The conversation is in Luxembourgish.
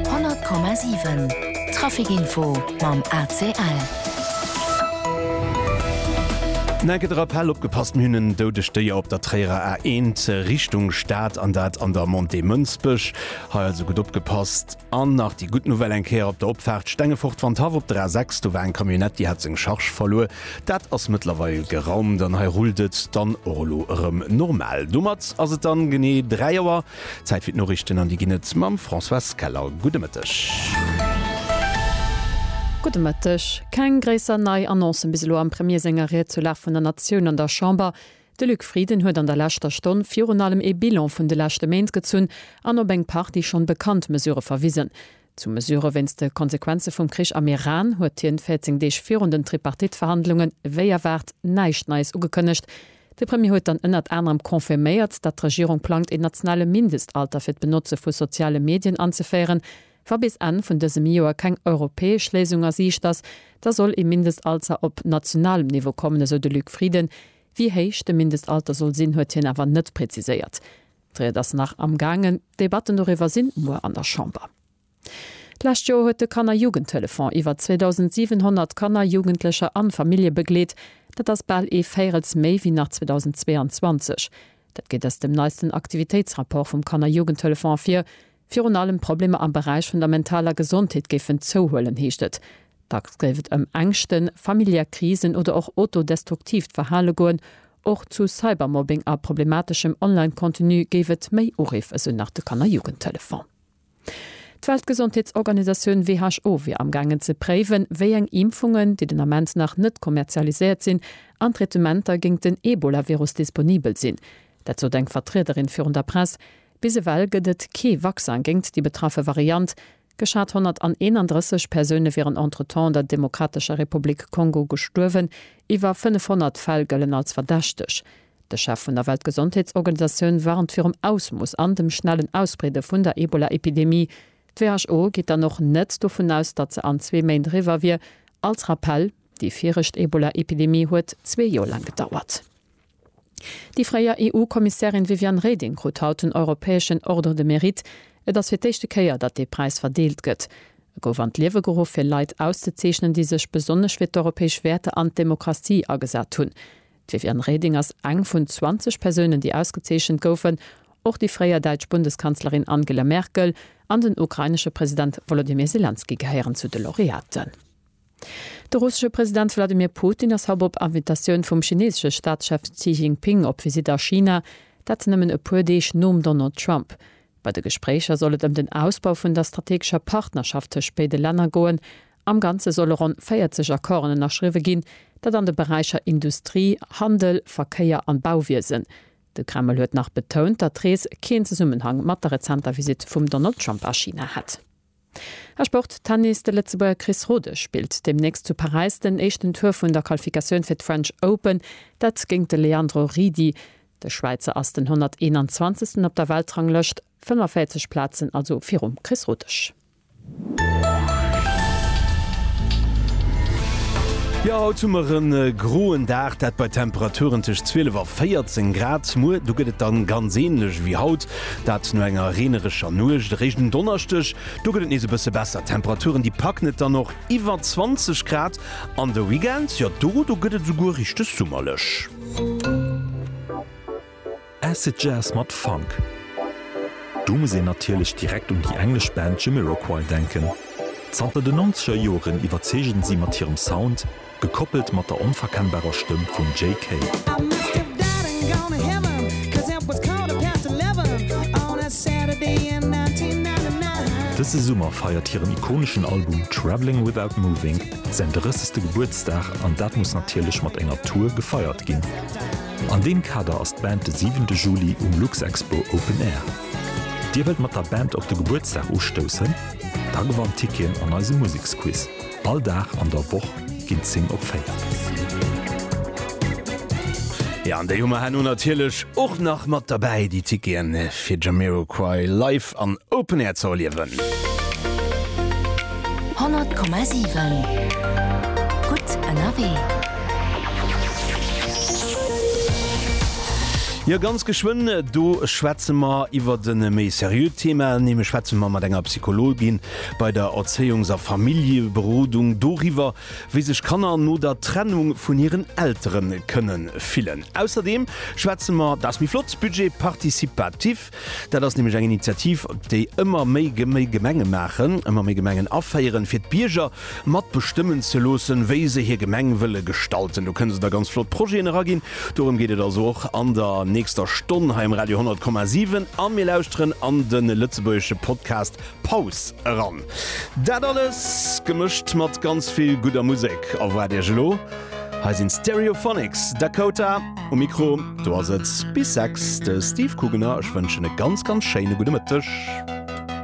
100,7 Trafic-Info mam ACL. Nä gëtt e Rappell, Opgepasst, mir hunn en doudegt Déier op der Tréierer A1 Richtung Stad, an dat an der Montée Mënsbech. Hei also gutt opgepasst. An nach déi gutt Nouvelle eng Kéier op der Opfaart Stengefort-Wandhaff op der A6. Do war eng Camionnette, déi hat seng Charge verluer. Dat ass mëttlerweil geraumt an hei rullt et dann och elo erëm normal. Domat ass et dann genee 3 Auer. Zäit fir d'Noriichten an déi ginn et mam Françoise Keller. Gudde Mëtteg. Gudde Mëtteg. Keng gréisser nei Annoncen bis elo am Premier senger Ried zur Lag vun der Natioun an der Chamber. De Luc Frieden huet an der leschter Stonn virun allem ee Bilan vun de leschte Méint gezunn an op eng Partie schonn bekannt Mesurë verwisen. Zu Mesure wéinst de Konsequenze vum Krich am Iran huet hien 14 Deeg virun den Tripartite-Verhandlungen, wéi erwaart, näischt Neies ugekënnegt. De Premier huet dann ënnert anerem confirméiert, datt d'Regierung plangt een nationale Mindestalter fir d'Benotze vu soziale Medien anzeféieren. Wa bis Enn vun dësem Joer keng europäesch Léisung a Siicht ass, da soll ee Mindestalzer op nationalem Niveau kommen, esou de Luc Frieden. Wéi héich de Mindestalter soll sinn, huet hien awer net preziséiert. D'Ried ass nach am gaangen. D'Debatten doriwwer sinn muer an der Chamber. D'lescht Joer huet de Kanner Jugendtelefon iwwer 2.700 Kanner, Jugendlecher an Famillje begleet. Dat ass bal ee Véirels méi wéi nach 2022. Dat geet aus dem neisten Aktivitéitsrapport vum Kanner Jugendtelefon ervir. Virun allem d'Problemer am Beräich vun der mentaler Gesondheet géifen zouhuelen, heescht et. Dacks géif et ëm Ängschten, familiär Krisen oder och autodestruktiivt Verhale goen. Och zu Cybermobbing a problemateschem Online-Contenu géif et méi Uriff, esou nach de Kanner-Jugendtelefon. D'Weltgesondheetsorganisatioun WHO wier amgaangen ze préiwen, wéi eng Impfungen, déi den Ament nach net kommerzialiséiert sinn, an Traitementer géint den Ebola-Virus disponibel sinn. Dat sot eng Vertriederin virun der Press. Bis ewell gëtt et kee Vaccin géingt déi betraffe Variant. Geschat 131 Persoune wieren entretemps an der Demokratescher Republik Kongo gestuerwen. Iwwer 500 Fäll gëllen als verdächteg. De Chef vun der Weltgesondheetsorganisatioun warnt virum Ausmooss an dem schnellen Ausbreede vun der Ebola-Epidemie. D'WHO geet dann och net dovun aus, datt se an zwee Méint eriwwer wier. Als Rappell, Déi viregt Ebola-Epidemie huet zwee Joer laang gedauert. Déi fréier EU-Kommissärin Viviane Reding krut haut den europäeschen Ordre de Mérite. Et ass fir d'éischte Kéier, datt dee Präis verdeelt gëtt. E gouf an d'Liewe geruff, fir Leit auszezeechnen, déi sech besonnesch fir d'europäesch Wäerter an d'Demokratie agesat hunn. D'Viviane Reding ass eng vun 20 Persounen, déi ausgezeechent goufen. Och déi fréier däitsch Bundeskanzlerin Angela Merkel an den ukrainesche President Wolodymyr Selenskyj gehéieren zu de Laureaten. De russesche President Wladimir Putin ass haut op Invitatioun vum chineesesche Staatschef Xi Jinping op Visitt a China, dat nëmmen e puer Deeg nom Donald Trump. Bei de Gespréicher soll et ëm den Ausbau vun der strategescher Partnerschaft tëscht béide Länner goen. Am Ganze solle ronn 40 Accorden ënnerschriwwe ginn, dat an de Beräicher Industrie, Handel, Verkéier an Bauwiesen. De Kreml huet nach betount, datt d'Rees keen Zesummenhang mat der rezenter Visitt vum Donald Trump a China hätt. A Sport, Tennis, De Lëtzebuerger Chris Rodesch spillt deemnächst zu Paräis den éischten Tour vun der Qualifikatioun fir d'French Open, dat géint de Leandro Ridi. De Schwäizer ass den 121. op der Weltranglëscht, 45 Plazen also virum Chris Rodesch. Jo haut hu mer en groen Dag, dat bei Temperaturen tëscht 12 a 14 Grad. Muer do gëtt et dann ganz ähnlech ewéi haut. Dat no enger reenerescher Nuecht. Eréischt um Donneschdeg, do gëtt et nees e bësse besser. D'Temperaturen, déi packen et dann och iwwer 20 Grad. An de Weekend, jo do, do gëtt et esouguer richteg summerlech. Acid Jazz mat Funk, do muss een natierlech direkt un déi englesch Band Jamiroquai denken. Zanter den Nonzeger Joren iwwerzeegen si mat hirem Sound, Gekoppelt mat der onverkennbarer Stëmm vum Jay Kay. Dëse Summer feiert hiren ikoneschen Album Travelling Without Moving säin 30. Gebuertsdag an dat muss natierlech mat enger Tour gefeiert ginn. An deem Kader ass d'Band de 7 de Juli um Luxexpo Open Air. Dir wëllt mat der Band op de Gebuertsdag ustoussen? Da gewannt Ticketen an eisem Museksquiz. All Dag an der Woch ginn 10 op 4. Jo an déi hu mer herno natierlech och nach mat derbäi, déi Ticketen fir Jamiroquai live an Open Air ze erliewen. 100,7 Gutt ënnerwee. Jo ganz geschwënn do schwätze mer iwwert e méi seriöt Thema, nämlech schwätze mer mat enger Psychologin Bei der Erzéiungs a Familljeberodung doriwwer, wéi sech Kanner no der Trennung vun hiren Eltere kënne fillen. Ausserdeem schwätze mer, dat ass méi flott, Budget participatif. Dat ass nämlech eng Initiativ, déi ëmmer méi Gemenge maachen, ëmmer méi Gemengen aféieren, fir d'Bierger mat bestëmmen ze loossen, wéi se hir Gemeng wëlle gestalten. Do kënne se da ganz flott Projeten eraginn. Dorëm geet et also och an der nächster Stonn hei um Radio 100,7. A mir lauschteren an de lëtzebuergesche Podcast Paus eran. Dat alles gemëscht mat ganz vill gudder Musek erwaart iech elo. Hei sinn Stereophonics, Dakota um Mikro. Do ass et bis 6 de Steve Kugener. Ech wënschen e ganz, ganz schéine gudde Mëtteg.